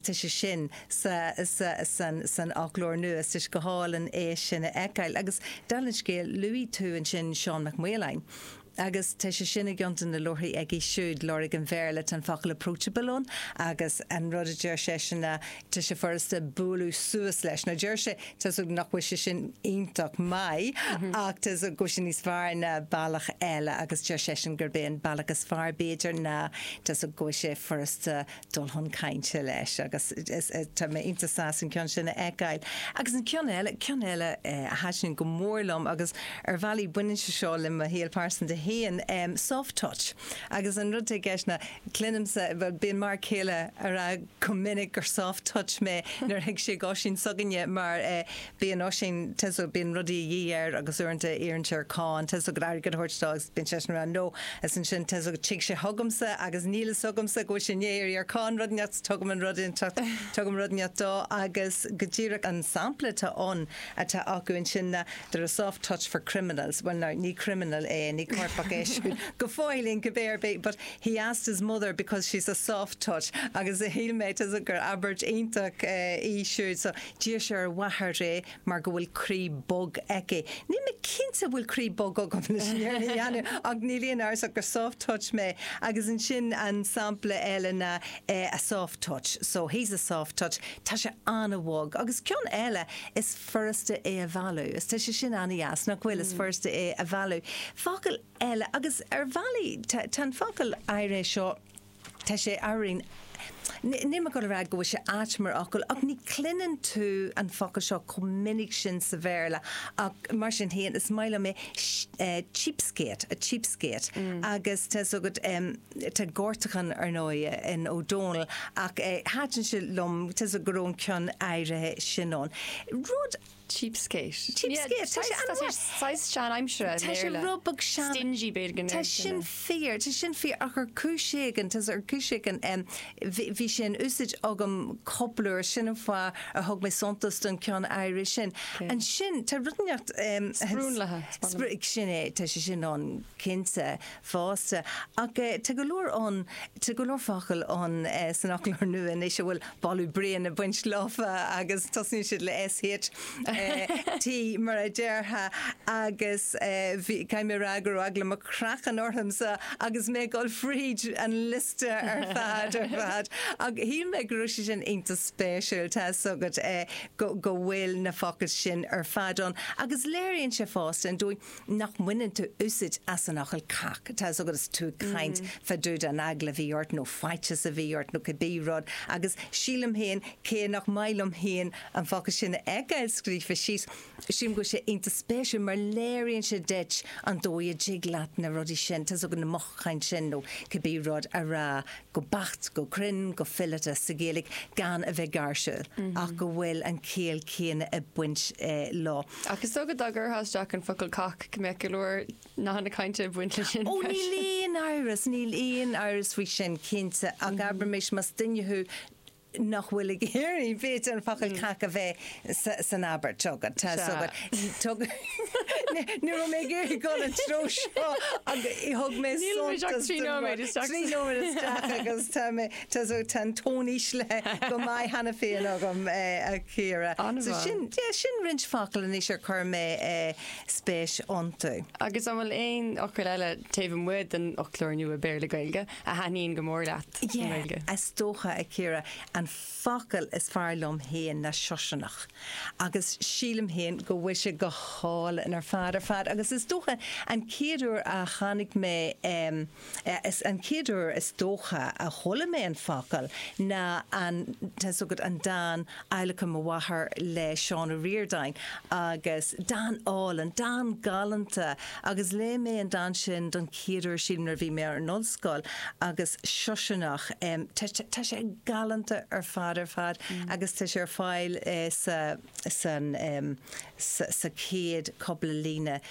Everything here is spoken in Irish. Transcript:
tá sé sin san fhoclóir nua, is tá sé go hálainn é sin a fheiceáil. Agus dála an scéil, luaigh tú ansin Seán Mac Maoláin, agus tá sé sin i gceann de na leabharthaí aige siúd, Lorg an Bhéarla, tá an focal approachable ann, agus an rud a deir seisean ná, tá sé furasta bualadh suas leis. Now deir sé, tá's agat nach bhfuil sé sin iontach maith, ach tá's agat go bhfuil sé níos fearr ná bealach eile, agus deir seisean gurb é an bealach is fearr b'fhéidir ná, tá's agat go bhfuil sé furasta, dul chun cainte leis agus tá mé iontach sásta an ceann sin a fheiceáil. Agus an ceann eile, ceann eile a thaitníonn go mór liom agus ar bhealaí baineann sé seo le mo shaol pearsanta féin, soft touch. Agus an rud atá i gceist ná cluinimse, bhuel bíonn m'fhear céile ag rá go minic gur soft touch mé nuair a thig sé go hOisín s'againne mar Bíonn Oisín, tá's agat, bíonn rudaí a dhíth air agus uaireanta iarrann sé ar Con, tá's agat, airgead a thabhairt dó agus bíonn seisean ag rá no, agus ansin, tá's agat tig sé chugamsa agus níl fhios agamsa go bhfuil sé i ndiaidh iarraidh ar Con rud inteacht so tugaim an rud inteacht, tugaim rud inteacht dó agus go díreach an sampla atá ann, atá acu ansin ná they're a soft touch for criminals. Bhuel now, ní criminal é, ní coirpeach é siúd go fóillín cibé ar bith but he asked his mother because she's a soft touch agus shíl mé, tá's agat, gur abairt iontach í siúd so. D'iarr sé ar a mháthair é mar go bhfuil croí bog aici. Níl mé cinnte an bhfuil croí bog agam leis an fhírinne a dhéanamh ach níl aon amhras ach gur soft touch mé agus ansin an sampla eile ná eh a soft touch so he's a soft touch tá sé an-bhog agus ceann eile is furasta é a mhealladh is tá sé sin an-deas nach bhfuil is furasta é a mhealladh focal eile agus ar bhealaí tá an focal áirithe seo Tá sé araon. Níl mé ag dul a rá go bhfuil sé ait mar fhocal, ach ní chluineann tú an focal seo chomh minic sin sa Bhéarla, ach mar sin féin, is maith liom é, cheapskate, a cheapskate. Agus tá's agat, tá gortachán, ar ndóigh, in Ó Dónaill, ach thaitin sé liom, tá's agat go raibh an ceann áirithe sin ann. Rud Cheapskate. Cheapskate. Tá sé an-mhaith. Saghas seanaimseartha i mBéarla. Tá sé rud beag sean-. Stingy beag in Éirinn. Tá sin fíor, tá sin fíor ach ar chúis éigin, tá's agat ar chúis éigin, bhí sé in úsaid agam cúpla uair, sin an fáth ar thug mé suntas don ceann áirithe sin. Ansin, tá rud inteacht. Sprionlaithe. Sin é, tá sé sin ann cinnte. fosta. Ach tá go leor ann, tá go leor focal ann san Fhoclóir Nua anois a bhfuil boladh bréan ag baint leofa agus tosaíonn siad le S, H, I, T mar a déarfá, agus caithfidh mé a rá go raibh eagla mo chraicinn orthamsa agus mé ag dul fríd an liosta ar fad, ar fad. Ach shíl mé go raibh sé sin iontach spéisiúil, tá 'fhios agat, go bhfuil na focail sin ar fad ann agus léiríonn sé fosta an dóigh, nach mbaineann tú úsaid as an fhocal cac, tá's agat is tú ag caint fadúda an eagla a bhí ort nó faitíos a bhí ort nó cibé rud agus sílim féin cé nach maith liom féin an focal sin a fheiceáil scríofa síos, sílim go bhfuil sé iontach spéisiúil mar léiríonn sé duit an dóigh a dtig leat na rudaí sin, tá's agat na mothúcháin sin nó cibé rud, a rá go beacht, go cruinn, go fileata sa Ghaeilge gan a bheith gáirsiúil ach go bhfuil an chiall céanna ag baint leo. Ach is dócha dá gcuirtheá isteach an focal cac go mbeadh go leor nathanna cainte ag baint leis sin freisin. Ó níl aon amhras, níl aon amhras faoi sin, cinnte, ach abraimis más duine thú nach bhfuil ag iarraidh, b'fhéidir, an focal cac a bheith san abairt agat, tá a fhios agat. Ní raibh mé ag iarraidh dul an treo seo agus thug mé suntas do. Níl muid ach trí nóiméad isteach. Trí nóiméad isteach agus tá mé Tá tá an tón íslithe go maith cheana féin agam, a Chiara. So sin, yeah, sin roinnt focal anois ar chuir mé spéis iontu. Agus an bhfuil aon fhocail eile taobh amuigh den fhoclóir nua Béarla-Gaeilge a thaitníonn go mór leat i nGaeilge? Yeah, is dócha, a Chiara, an focal is fearr liom féin ná siosarnach. Agus sílim féin go bhfuil sé go hálainn ar fad ar fad. Agus is dócha an chéad uair a chonaic mé, eh, Is an chéad uair is dócha a chuala mé an focal ná an, tá's agat, an dán Adhlacadh Mo Mháthar le Seán Ó Ríordáin agus dán álainn, dán galánta agus léigh mé an dán sin don chéad uair sílim nuair a bhí mé ar an ollscoil agus Siosarnach em tá sé, tá sé galánta ar fad ar fad agus tá sé ar fáil eh sa, san em sa, sa chéad cúpla líne